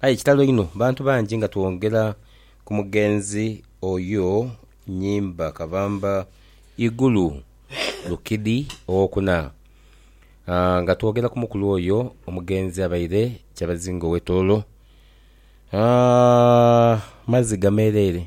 Aye kitalo inho bantu bangi nga twongera ku mugenzi oyo Nyimba Kabamba Igulu Lukidi owokuna. Nga twogera ku mukulu oyo omugenzi abaire kyabazinga owe Tooro. Maziga mereere,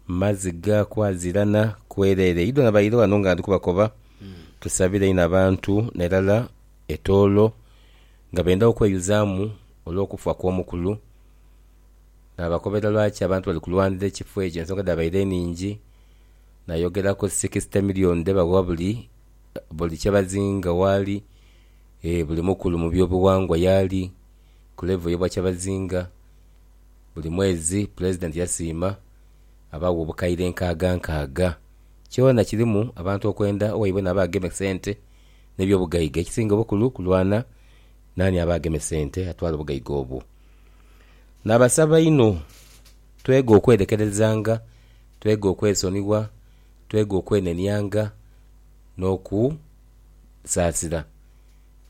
maziga kwazirana kwerere. Idho nabaire ghano nga ndikubakoba tusabire inho abantu nerala e Tooro. Nga benda okweyuzaamu olw'okufa kw'omukulu naabakobera lwaki abantu bali kulwanira ekifo ekyo. Ensonga dhabaire nhingi, naayogera ku sikisite milioni dhe bagha buli buli kye bazinga waali, ee buli mukulu mu byobughangwa yaali ku levo y'Obwakyabazinga. Buli mwezi Pulezidenti yasiima abaagho obukaire nkaaga nkaaga. Kyona kirimu abantu okwenda owaibwe naabo agema esente. n'ebyobugaiga. Ekisinga obukulu kulwana naani aba ageme sente atwale obugaiga obwo. Nabasaba inho twege okwerekerezanga, twege okwesonigha, twege okwenenianga n'okusaasira.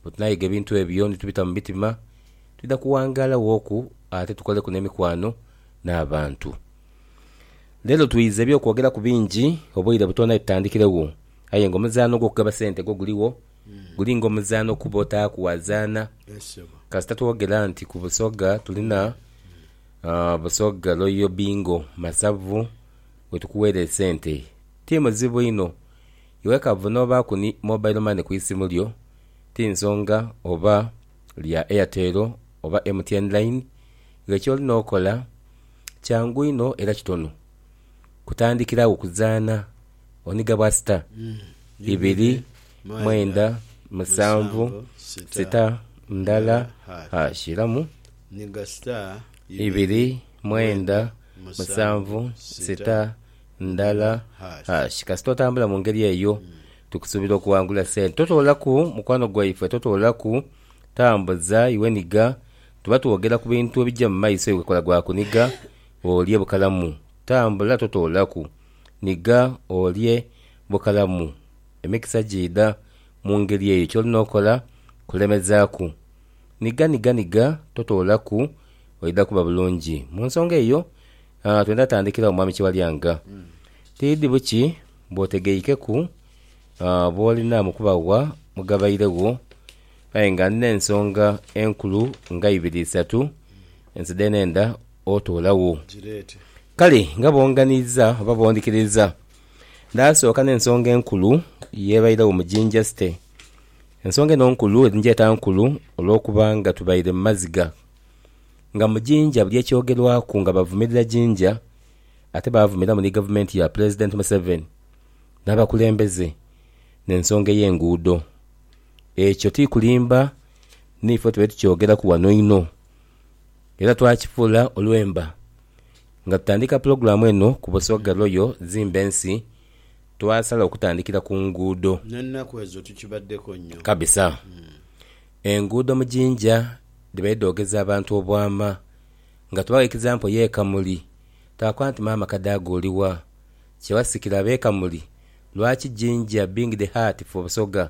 Bwetunayiga ebintu ebyo ni tubita mu mitima, twidha kuwangaala wooku ate tukoleku n'emikwano n'abantu. Leero twiiza eby'okwogeraku bingi, obweire butoona itutandikire wo. Aye nga omuzaano ogw'okugaba sente gwo guligho, guli nga omuzaano okuba otaaku waazaana. Kasita twogera nti ku Busoga tuli na Busoga Royal Bingo, Masavu we tukuweera esente. Ti muzibu inho, iwe kavu n'obaaku ni mobile money ku isimu lyo, ti nsonga oba lya Airtel oba MTN Line, ghe ky'olina okola kyangu inho era kitono kutandikira agho kuzaana. oniga bwa sita ibiri mwenda musanvu sita ndala hash iramu ibiri mwenda musanvu sita ndala hash kasita otambula mu ngeri eyo tukusuubira okuwangula sente totoolaku mukwano gwaife totoolaku tambuza iwe niga tuba twogera ku bintu ebija mu maiso iwe kola gwa kuniga olye bukalamu tambula totoolaku. Nhiga olye bukalamu. Emikisa giidha mu ngeri eyo. Ky'olina okola kulemezaaku. Nhiga, nhiga, nhiga, totoolaku, oidha kuba bulungi. Mu nsonga eyo, twendha tandhikira agho Mwami Kiwalyanga. Tidhi buki bw'otegeikeku b'olina mu kuba gha mugabairegho aye nga ndina ensonga enkulu nga ibiri isatu nze dhenenda otoolagho. Kale nga boonganiiza oba boondhikiriiza, ndaasooka n'ensonga enkulu y'ebairagho mu Jinja City. Ensonga eno nkulu, eri ngyeeta nkulu olwokuba nga tubaire mu maziga. Nga mu Jinja buli ekyogerwaku nga bavumirira Jinja, ate baavumiramu ni gavumenti ya Pulezidenti Museveni n'abakulembeze n'ensonga ey'enguudo. Ekyo ti kulimba, niife tube tukyogeraku wano inho. era twakifuula olwemba. Nga tutandika pulogulaamu eno ku Busoga Royal Zimba Ensi, twasala okutandikira ku nguudo. N'ennaku ezo tukibaddeko nnyo. Kabisa. Enguudo mu Jinja dhibaire dhoogeza abantu obwama. Nga tubagha ekizampo y'e Kamuli, twakoba nti maama Kadaga oli wa? Kye wasikira ab'e Kamuli, lwaki Jinja being the heart for Busoga?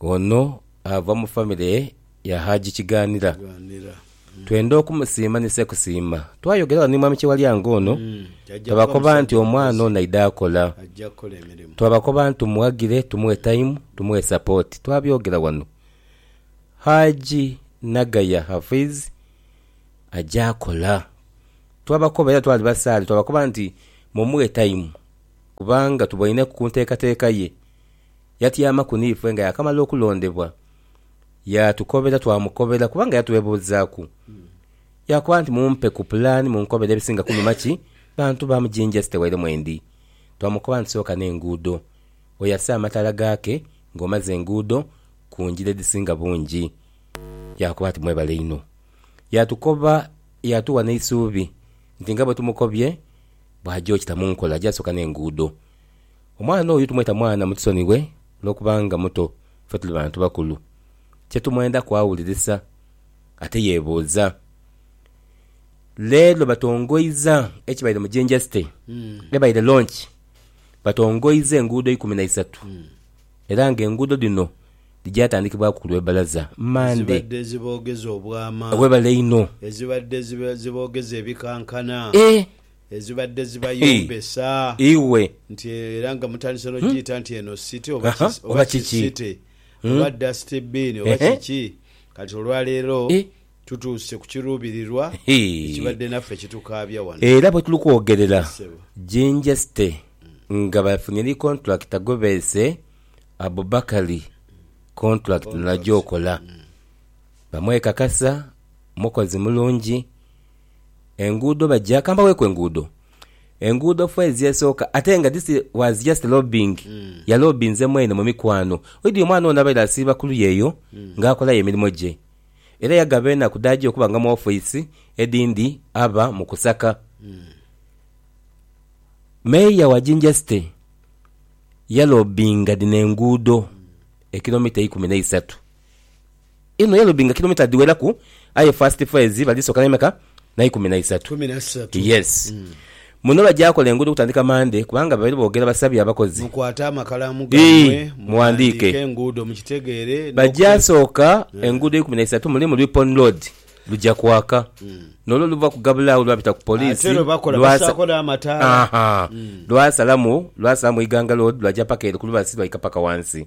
Ono ava mu famire ya Haji Kiganira. Twenda okumusiima ni Ssekusiima. Twayogera wano ni Mwami Kyewalya nga ono twabakoba nti omwana ono aidhe akola. Twabakoba nti tumuwagire, tumuwe time, tumuwe support. Twabyogera wano. Haji Nagaya Hafiz aja akola. Twabakoba era twali basaale twabakoba nti mumuwe time kubanga tuboineku ku nteekateeka ye. Yatyamaku niife nga yaakamala okulondebwa, yaatukobera twamukobera kubanga yatwebuuzaaku. Yaakoba nti, Mumpe ku pulaani munkobere ebisinga kunuma ki bantu ba mu Jinja City waire mwendi. Twamukoba nti, Sooka n'enguudo, oyase amataala gaake ng'omaze enguudo ku ngira edhisinga bungi. Yaakoba ati, Mwebale inho. Yaatukoba yaatuwa n'eisuubi nti nga bwe tumukobye bw'aja okita mu nkola aja sooka n'enguudo. Omwana oyo tumweta mwana mutusonighe olwokuba nga muto ffe tuli bantu bakulu. Kyetumwendaku awulirisa ate yebuuza. Leero batongoiza ekibaire mu Jinja City ebaire launch batongoiza enguudo ikumi na isatu era nga enguudo dhino dhigyatandikibwaku ku lwe balaza Monday. Ezibadde ziboogeza obwama. Webale inho. Ezibadde ziboogeza ebikankana. Eeh. Ezibadde zibayombesa nti era nga mutandise n'ogiyita nti eno city oba ki oba ki city oba dust bin oba kiki kati olwaleero tutuuse ku kiruubirirwa ekibadde naffe kitukaabya wano. Era bwe tuli kwogerera Jinja City nga bafunye ni kontulakita gwe beese Abubakali kontulakiti nagyokola bamwekakasa mukozi mulungi. Enguudo bajja kambaweeku enguudo. Enguudo fo ezyesooka ate nga this was just lobbying. Yaloobinze mwene mu mikwano. Oidhi omwana ono abaire asiiba ku luya eyo nga akolayo emirimo gye. Era yagaba enaku dhaja okuba nga mu ofice edhindi aba mu kusaka. Mayor wa Jinja City yaloobinga dhino enguudo ekilomita eikumi n'eisatu. Eno yalobi nga kilomita dhiweraku aye first phase bali soka ne meka na ikumi na isatu. Yes. Muno bagya kola enguudo okutandika Monday kubanga babaire boogera basabye abakozi ii mughandiike bagya sooka enguudo ikumi na isatu mulimu Ripon Road lugya kwaka nolwo oluva ku Gabula agho lwapita ku poliisi lwasa ahaa lwasalamu lwasalamu Iganga Road lwagya paka ere ku lubasi lwaika paka ghansi.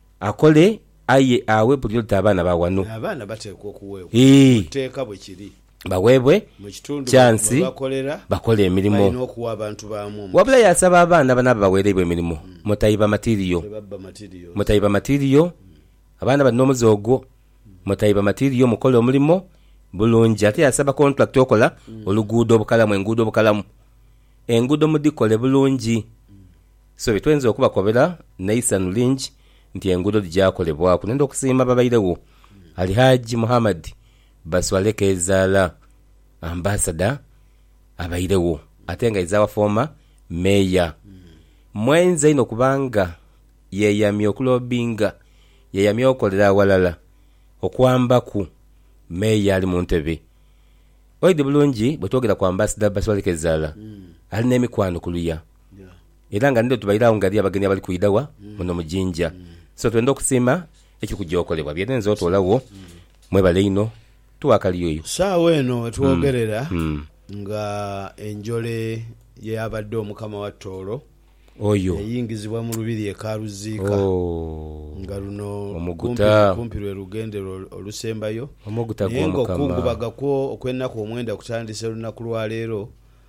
Akole aye aghe buli oti abaana ba ghano. Aye abaana bateekwa okuweebwa mu tteeka bwe kiri. Baweebwe kyansi bakole emirimo. Wabula yaasaba abaana abanaaba baweereibwa emirimo mutaiba matiiriyo. Mutaiba matiiriyo, abaana bali n'omuze ogwo. Mutaiba matiiriyo mukole omulimo bulungi. Ate yaasaba kontulakita okola oluguudo obukalamu, enguudo obukalamu. Enguudo mudhikole bulungi. So bye tweinza okubakobera n'eisanhu lingi nti enguudo dhigyakolebwaku n'enda okusiima ababairegho, Al Hajji Muhammad Baswale Kezaala, Ambasada abairegho ate nga izawa fooma Meeya. Mwainza inho kubanga yeeyamye okuloobinga, yeeyamye okolera aghalala okwambaku Meeya ali mu ntebe. Oidhi bulungi bwe twogera ku Ambasada Baswale Kezaala ali n'emikwano kuluya. Era nga nidho tubaire agho ngali abagenyi abali kwidha gha muno mu Jinja. So twendha okusiima ekiri kugyokolebwa byerenze otolagho. Mwebale inho tugha kaliyoyo. Saagha eno wetwogerera nga enjole y'eyabadde Omukama wa Tooro eyingizibwa mu Lubiri e Karuziika nga luno kumpi lwe lugendero olusembayo naye nga okukungubaga kwo okw'enaku omwenda kutandise lunaku lwa leero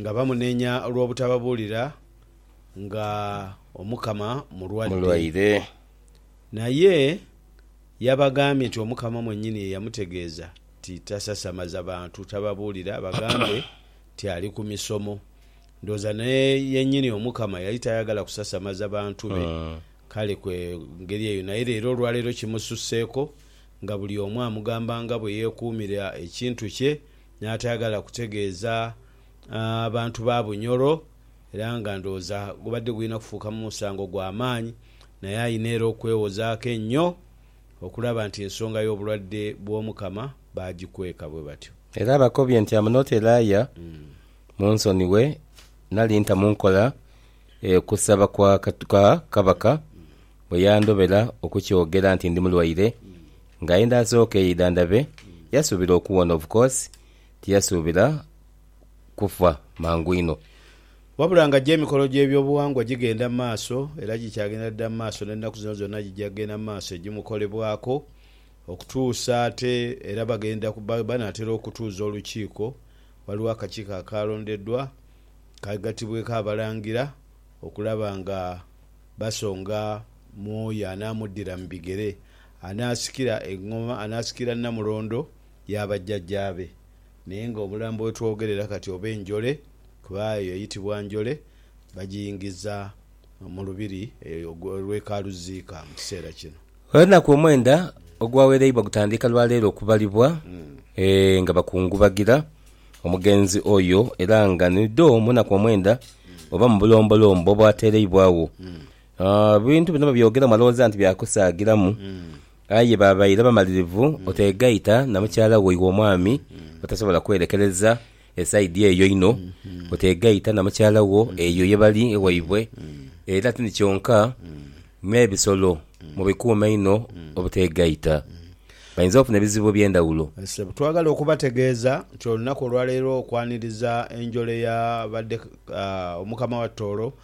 Nga bamunenya olw'obutababuulira nga Omukama mulwadde. Mulwaire. Naye yabagambye nti Omukama mwennyini ye yamutegeeza nti tasasamaza bantu tababuulira, bagambe nti ali ku misomo. Ndowooza ne yennyini Omukama yali tayagala kusasamaza bantu be, kale ku ngeri eyo. Naye leero olwaleero kimususseeko nga buli omu amugamba nga bwe yeekuumira ekintu kye. n'atayagala kutegeeza bantu ba Bunyoro era nga ndowooza gubadde gulina kufuuka musango gwa maanyi naye alina era okwewozaako enyo okulaba nti ensonga y'obulwadde bw'Omukama baagikweka bwe batyo. Era abakobye nti amunooteraaya mu nsoni we nali nta mu nkola okusaba kwa Kabaka bwe yandobera okukyogera nti ndi mulwaire Nga enda asooka eidha ndabe, yasuubira okuwona. Of course tiyasuubira kufa mangu inho. Wabula nga gyo emikolo gy'ebyobuwangwa gigenda mu maaso era gikyagenda dhidha mu maaso n'ennaku zino zonna gija kugenda mu maaso egimukolebwako okutuusa ate era bagenda banaatera okutuuza olukiiko. Waliwo akakiiko akaalondedwa kaghatibweku Abalangira okulaba nga basonga mu oyo anaamuddira mu bigere. Anaasikira engoma, anaasikira nnamulondo ya bajjajjaabe. Naye ng'omulambo we twogerera kati oba enjole, kuba eyo eyitibwa njole, bagiyingiza mu lubiri lw'e Kaaluziika mu kiseera kino. Olunaku omwenda ogwawereibwa gutandika lwa leero okubalibwa nga bakungubagira omugenzi oyo era nga ni dho mu naku omwenda oba mu bulombolombo obwatereibwagho Ebintu bino babyogera mu malowooza nti bya kusaagiramu, aye baabaire bamalirivu oteegaita na mukyala wo iwe omwami otasobola kwerekereza esaidi eyo inho, oteegaita na mukyala wo eyo ye bali ewaibwe. Era tindi kyonka, n'ebisolo mubikuume inho obuteegaita. Bainza ofuna ebizibu eby'endhawulo. Ssebo, twagala okubategeeza nti olunaku olwaleero okwaniriza enjole ya badde Omukama wa Tooro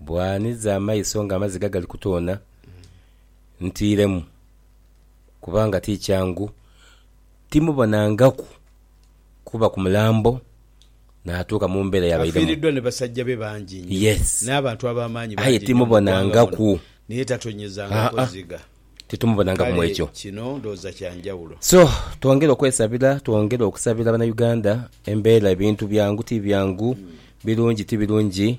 Bwanhiza amaiso ng'amaziga gali kutoona, ntiiremu kubanga ti kyangu timubonangaku kuva ku mulambo naatuuka mu mbeera yabairemu. Afiiriddwa ni basajja be bangi inho, Yes. n'abantu ab'amaanyi Aye bangi inho mu ggwanga muno, timubonangaku. naye tatonyezangako Haa-a. ziga. Titumubonangaku mu Kale ekyo. kino ndowooza kya njawulo. So, twongere okwesabira, twongere okusabira Banauganda, embeera, ebintu byangu ti byangu, birungi ti birungi.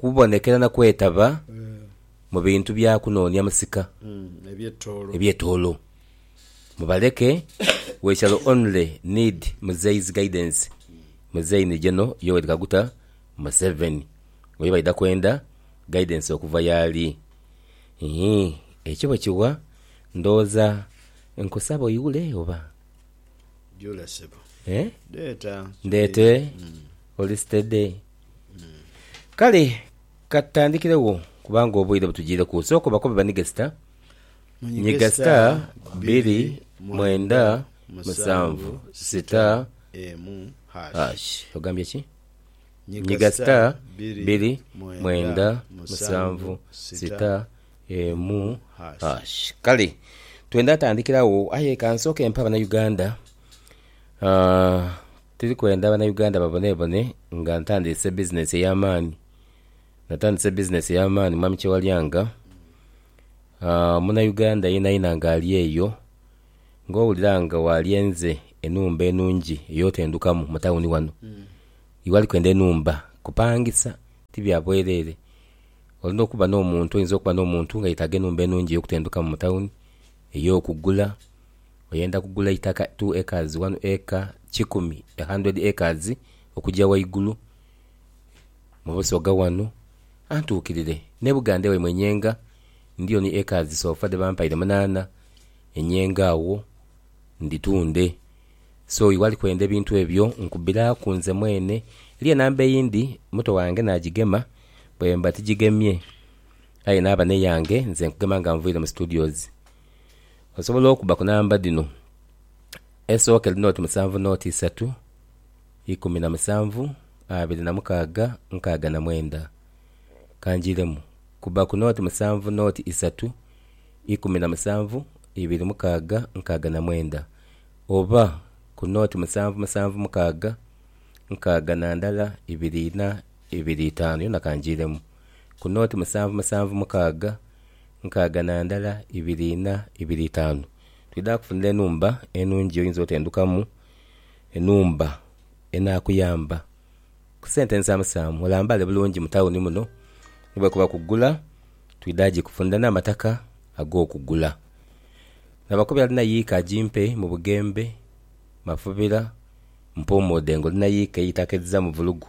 Kubonekera na kwetaba mu bintu bya kunoonia musika ebye toolo. Mubaleke we shall only need Muzei's guidance Muzei ni General Yoweri Kaguta Museveni oyo baidha kwenda guidance okuva yaali. Ii Ekyo bwe kiwa ndowooza nkusaba oiwule oba? Eeh? Ndeete? Oli steady? Kale ka tutandikiregho kubanga obwire butujiireku. Sooka obakobe banige sita. Nyiga sita bbiri mwenda musanvu sita hash. Ogambye ki? Nyiga sita bbiri mwenda musanvu sita emu hash. Kale twende atandikira agho aye ka nsooke mpe Abanauganda ah, Tuli kwenda Banauganda babonebone nga ntandiise bizinensi ey'amaani. Natandise bizinensi ey'amaani Mwami Kyewalyanga. Munauganda yenayena ng'ali eyo, ng'owulira nga waalyenze enhumba enungi ey'otendukamu mu tawuni wano, iwe ali kwenda enhumba kupangisa, ti bya bwereere. Olina okuba n'omuntu, oyinza okuba n'omuntu nga yeetaaga enhumba enungi ey'okutendukamu mu tawuni. ey'okugula, oyenda kugula eitaka two acres, one acre, kikumi, a hundred acres okugya ghaigulu mu Busoga ghano, antuukirire n'e Buganda ewaimwe e Nyenga ndiyo ni acres so far dhe bampaire munaana e Nyenga agho ndhitunde. So iwe ali kwenda ebintu ebyo nkubiraaku nze mwene. Eriyo enamba eyindi muto wange naagigema bwemba tigigemye. Aye naaba n'eyange nze nkugema nga nviire mu studios. Osobola okuba ku namba dhino, esooka eri nooti musanvu nooti isatu ikumi na musanvu abiri na mukaaga nkaaga na mwenda. Ka njiiremu, kuba ku nooti musanvu nooti isatu ikumi na musanvu ibiri mukaaga nkaaga na mwenda oba ku nooti musanvu musanvu mukaaga nkaaga na ndala ibiri ina Ibiri itaanu yona kangiiremu ku nooti musanvu musanvu mukaaga nkaaga na ndala ibiri inha ibiri itaanu. Twidha kukufunira enhumba enhungi oyinza otendukamu, enhumba enaakuyamba ku sente nsaamu saamu olambaale bulungi mu tawuni muno. Ni bwekuba kugula twidha gikufunira n'amataka ag'okugula. Naba kuba alina yiika agimpe mu Bugembe, Mafubira, Mpuumuudhe ng'olina yiika eitaka edhizamu vulugu.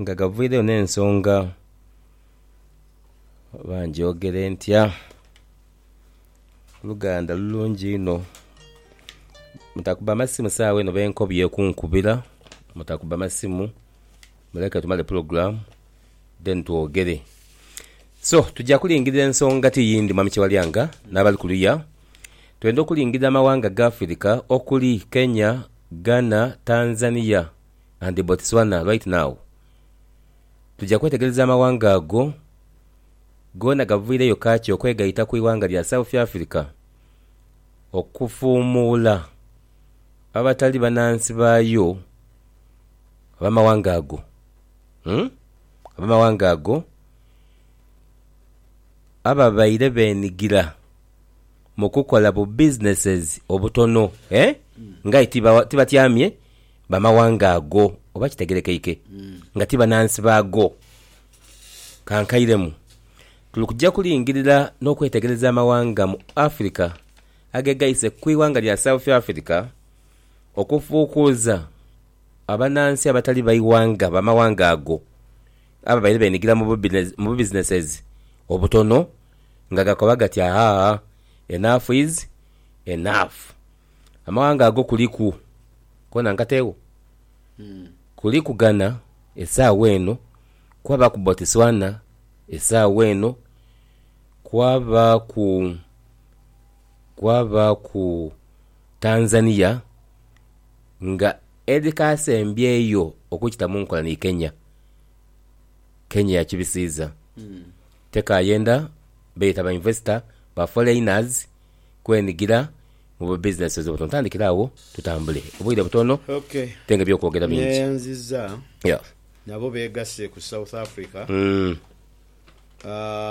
nga gavaireyo n'ensonga oba ngyogere ntya? Oluganda lulungi inho. Mutakubba masimu saagha eno b'enkobye okunkubira, mutakubba masimu, muleke tumale pulogulaamu then twogere. So, twidha kulingirira ensonga ti yindi Mwami Kyewalyanga n'abali kuluya, twendha okulingirira amawanga ga Afirika okuli, Kenya, Ghana, Tanzania. and Botswana right now. Tuja kwetegereza amawanga ago goona gaviireyo kaakyi okwegaita ku ighanga lya South Africa okufuumuula abatali banansi baayo abamawanga ago umm abamawanga ago ababaire benigira mukukola bu businesses obutono eeh nga aye tibatyamye. Bamawanga ago, oba kitegerekeike nga ti banansi baago. Kankairemu, tuli kuja kulingirira n'okwetegereza amawanga mu Afirika agegaise ku ighanga lya South Africa okufuukuuza abanansi abatali baighanga bamawanga ago ababaire benigira mu bu businesses obutono nga gakoba gati, Ahaa, enough is enough. Amaghanga ago kuliku koona nkateegho? Kuliku Ghana esaawa eno, kwabaaku Botswana esaawa eno, kwabaaku, kwabaaku Tanzania nga edhikaasembyeyo okukita mu nkola ni Kenya. Kenya yakibisiiza, tekayenda beeta ba investor, ba foreigners. kwenigira mu bu businesses obwo tuntandikire agho tutambule obwire butono ate nga ebyokwogera bingi. Neyanziza nabo begase ku South Africa.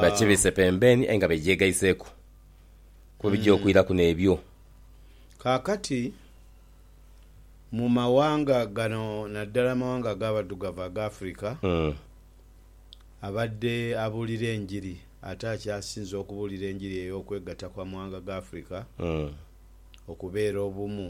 Bakibise pembeni aye nga begyegaiseku kuba bigya okwiraku nebyo. Kakati mu mawanga gano naddala amawanga agabaddugavu aga Africa abadde abuulira enjiri. Ate akyasinze okubuulira enjiri ey'okwegatta kw'amawanga g'Africa, okubeera obumu.